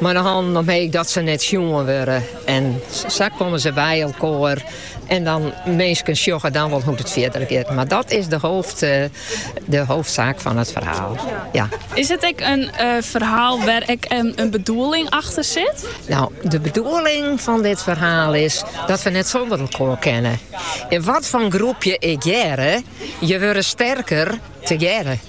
Mei de hannen omheech dat se net sjoen wurde. En sa komme se by elkoar. En dan minsken sjogge dan wol hoe't it fierder giet. Mar dat is de hoofd, de hoofdzaak fan it ferhaal. Ja. Is it ek in eh, ferhaal wêr't ek in, in bedoeling achter sit? No, de bedoeling fan dit ferhaal is dat we net sûnder elkoar kinne. Yn wat foar groep je ek hearre, je wurde sterker tegearre.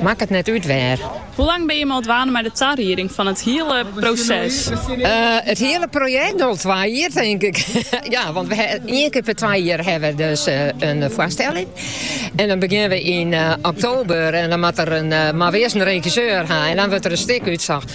Makket net út wêr. Hoe lang binne jimme al dwaande mei de tarieding fan it hiele proses? It hiele projekt? No, twa jier, tink ik. Ja, want ien kear per twa jier hawwe we dus in foarstelling. En dan begjinne we yn oktober en dan moat der mar wer 's in regisseur ha en dan wurdt der in stik útsocht.